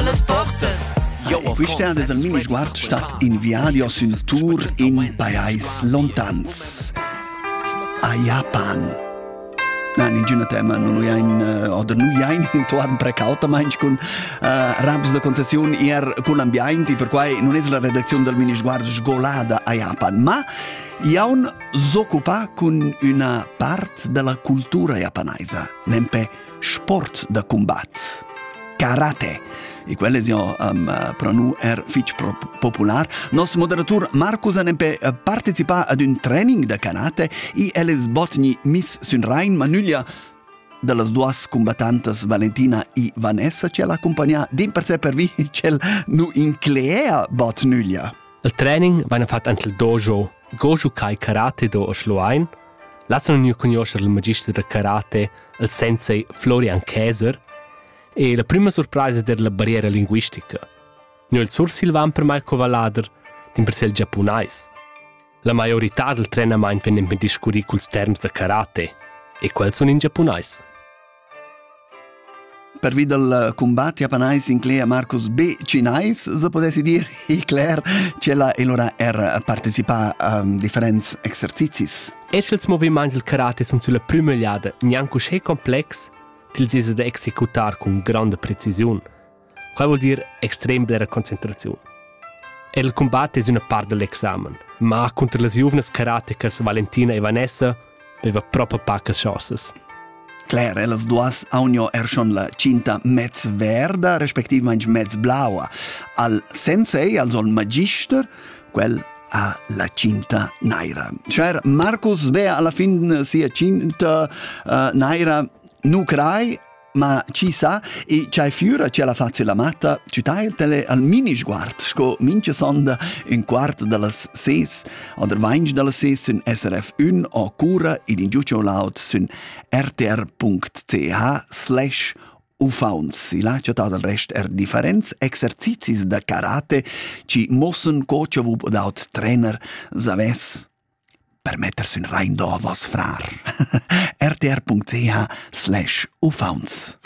E quista es il mini sguard stat in viadi o sün tour in pajais lontans. A Japan. Nein, in giuna tema non uiain uh, oder nu iain intuaden precautamaing cun uh, raps da concessiun ir cun ambiaint e perquai non es la redacziun dal mini sguard sgolada a Japan, ma iaun s'occupa cun üna part della cultura japanaisa, nempe sport da combat karate e quelle è um, per noi er fitch popular. Nos moderator Marcus ha nempe eh, partecipa ad un training da karate e elles botni Miss Sunrain Manuglia da las duas combattantas Valentina e Vanessa ci ha accompagnato din per sé per vi c'el nu inclea botnuglia. Il training va fatto anche il dojo Sco giu quai karate do a Schluein, lessan gnü cugnuoscher il magister da karate, il sensei Florian Käser, e la prüma surpraisa der la barriera linguistica. Gnö il sursilvan per mai co vallader, dimpersè il giapunais. La maiorità del trenamaint vegnan per discurrir culs terms da karate, e quels sun in giapunais. Pervi dal cumbat japanais inclegia Marcus B. Cinais, se potessi dir, Icler, ch'ella e lora er partecipà a um, differents exercizis. Es els movimaints del karate sun sulla prüma egliada gnanc uschè complex, til s'esa da executar cun granda precisiun. Quai vuol dir extrem blera concentraziun. El cumbat es üna part da l'examen, ma cunter las giuvnas karatekas Valentina e Vanessa veva propa pacas chaussas. Claire, ellas duas aunio er schon la cinta mezz verda, respectivamente mezz blaua. Al sensei, al sol magister, quel ha la cinta naira. Cher Marcus vea alla fin sia cinta uh, naira nu crai Ma chi sa, e c'hai füra chi la fazi la matta, tü tai tele al mini sguard, sco mincha sonda ün quart da las ses, oder vainch da las ses sün SRF1 o cura ed in giucio laut sün rtr.ch slash ufaunts. Il ha chattà dal rest er differents exercizis da karate chi mossen co cha vub daut trainer savess. per metter sün Rain d'ovos, frar. rtr.ch slash uffauns